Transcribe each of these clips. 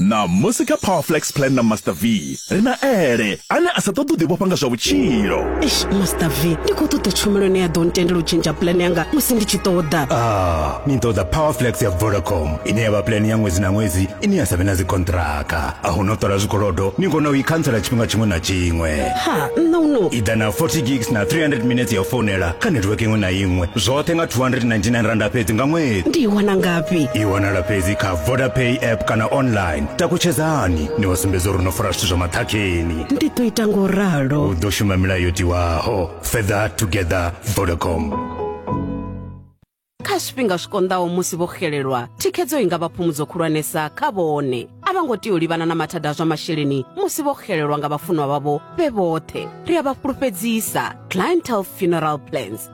ṋamusi kha powerflex plan na master v ri na ele ane a sa ṱoḓi u ḓivhofha nga zwa vhutshilo eish master v ndi khou ṱoḓa tshumelo ine ya ḓo ntendela u tshintsha plan yanga musi ndi tshi ṱoḓa a ah, ni ṱoḓa powerflex ya vodacom ine ya vha plan ya ṅwedzi na ṅwedzi ine ya sa vhe na dzikontraka a hu no ṱola zwikolodo ni kona u i khantsela tshifhinga tshiṅwe na tshiṅwe ha nṋe uno i ḓa na 40 gigs na 300 minutes ya u founela kha network iṅwe na iṅwe zwoṱhe nga 299 randa fhedzi nga ṅwedzi ndi i wana ngafhi i wanala fhedzi kha vodapay app kana online takutshedzani ni vha sumbedza uri no fara zwithu zwa maṱhakheni ndi ḓo ita ngo ralo u ḓo shuma milayo yo tiwaho further together vodacom kha zwifhinga zwi konḓaho musi vho xelelwa thikhedzo i nga vha phumudzo khulwanesa kha vhone a vha ngo tea u livhana na mathada a zwa masheleni musi vho xelelwa nga vhafunwa vhavho vhe vhoṱhe ri a vha fhulufhedzisa clientele funeral plans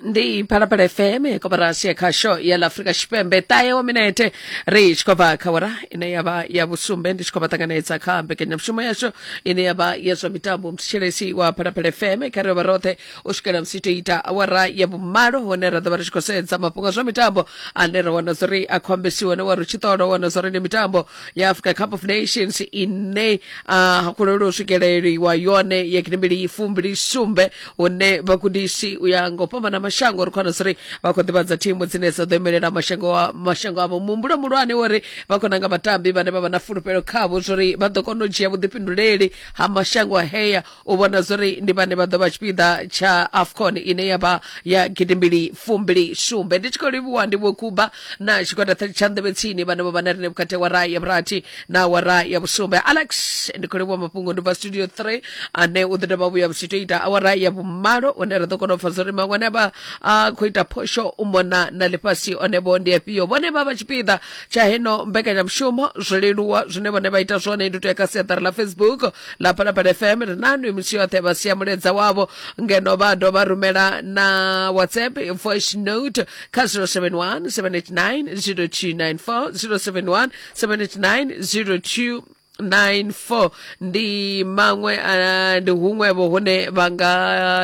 ndi phalaphala fm koporasi ya khasho ya la afrika tshipembe ṱahe wa minete ri tshi khou bva kha wara ine ya vha ya vhusumbe ndi tshi khou vha ṱanganedza kha mbekanyamushumo yashu ine ya vha ya zwa mitambo mthetshelesi wa phalaphala fm kha ri vha roṱhe u swikela musi to ita awara ya vhumalo hone ra ḓo vha ri tshi khou sedza mafhungo a zwa mitambo ane ra wana zwa uri a khou ambesiwa ne wa ri tshi ṱola wana zwa uri ndi mitambo ya africa cup of nations ine uh, kulelo swikeleliwa yone ya kinembili fumbili sumbe une vhagudisi u ya ngo fhambana mashango ri khou wana siri vha khou ḓivhadza thimu dzine dza ḓo imelela mashango wa- mashango avho muhumbulo muhulwane wori vha khou nanga vhatambi vhane vha vha na fulufhelo khavho zwori vha ḓo kona u dzhia vhuḓifhinduleli ha mashango a heya u vhona zwori ndi vhane vha ḓo vha tshipiḓa tsha afcon ine ya vha ya gidimbili fumbili sumbe ndi tshi khou livhuwa ndi vhokuba na tshigwada tsha- tsha nḓevhe tsini vhane vho vha na rine vhukati ha wara ya vhurathi na wara ya vhusumbe alex ndi khou livhuwa mafhungo ndi bva studio 3 ane u ḓo dovha vhuya vhutshito ita awara ya vhumalo une ra ḓo kona u pfa zwori maṅwe ane vha a khou ita phosho u mona na ḽifhasi one vho ndi afhio vhone vha vha tshipiḓa tsha heno mbekanyamushumo zwo leluwa zwine vhone vha ita zwone ndi u tea kha siaṱari ḽa facebook na phalaphala fm ri nanu imusi yoṱhe vha sia muledza wavho ngeno vha dovha rumela na whatsapp voice note kha 071 789 0294 071 789 02 94 ndi maṅwe ah, ndi huṅwevho hune vha nga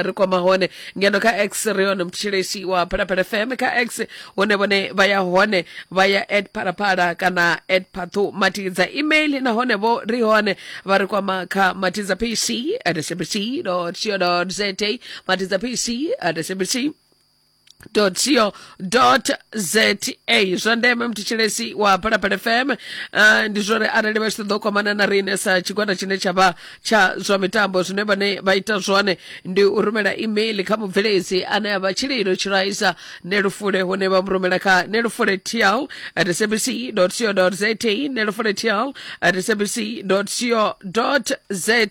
ri kwama hone ngeno kha x ri hone mutshilesi wa phalaphala fm kha x hune vhone vha ya hone vha ya at phalaphala kana at phathu matidza email nahone vho ri hone vha ri kwama kha matidza pc at sabc co za matidza pc at sabc co.za zwa ndeme mthetshelesi wa phalaphala fm uh, ndi zwori arali vha tshi ṱoḓa u kwamana na riṋe sa tshigwada tshine tsha vha tsha zwa mitambo zwine vhane vha ita zwone ndi u rumela email kha mubveledzi ane a vha tshililo tshiraisa nelufule hune vha mu rumela kha nelufule tl at sabc co za nelufule tl at sabc co za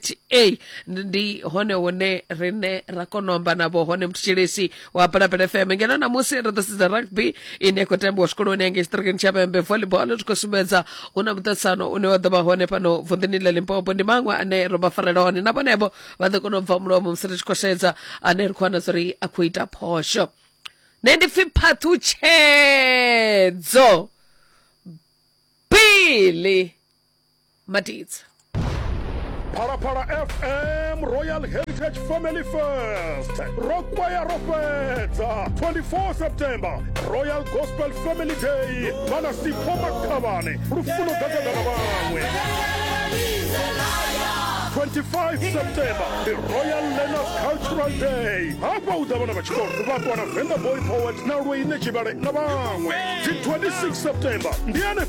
ndi hone hune rine ra kona u amba navho hone mthetshelesi wa balabela fm ngeno namusi ri ḓo sedza rugby ine ya khou tambiwa zwikoloni yange tshiṱirikini tsha vhembe volleyball ri khou sumbedza hu na muṱatsano une wa ḓo vha hone fhano vunḓuni ḽa limpopo ndi maṅwe ane ro vha farela hone na vhonevho vha ḓo kona u bva mulomo musi ri tshi khou sedza ane ri khou wana zwa uri a khou ita phosho nṋe ndi pfhi phaṱhutshedzo bili madidza phalaphala fm royal heritage family first ro kwaya ro fhedza 24 september royal gospel family day vha na sipho makhavhane lufuno ḓadzadza na vhaṅwe 25 september ndi royal learners cultural day hafha hu ḓa vhana vha tshikolo vha ṱwana venga boy poet na lweine tshivhale na vhaṅwe dzi 26 september ndi ane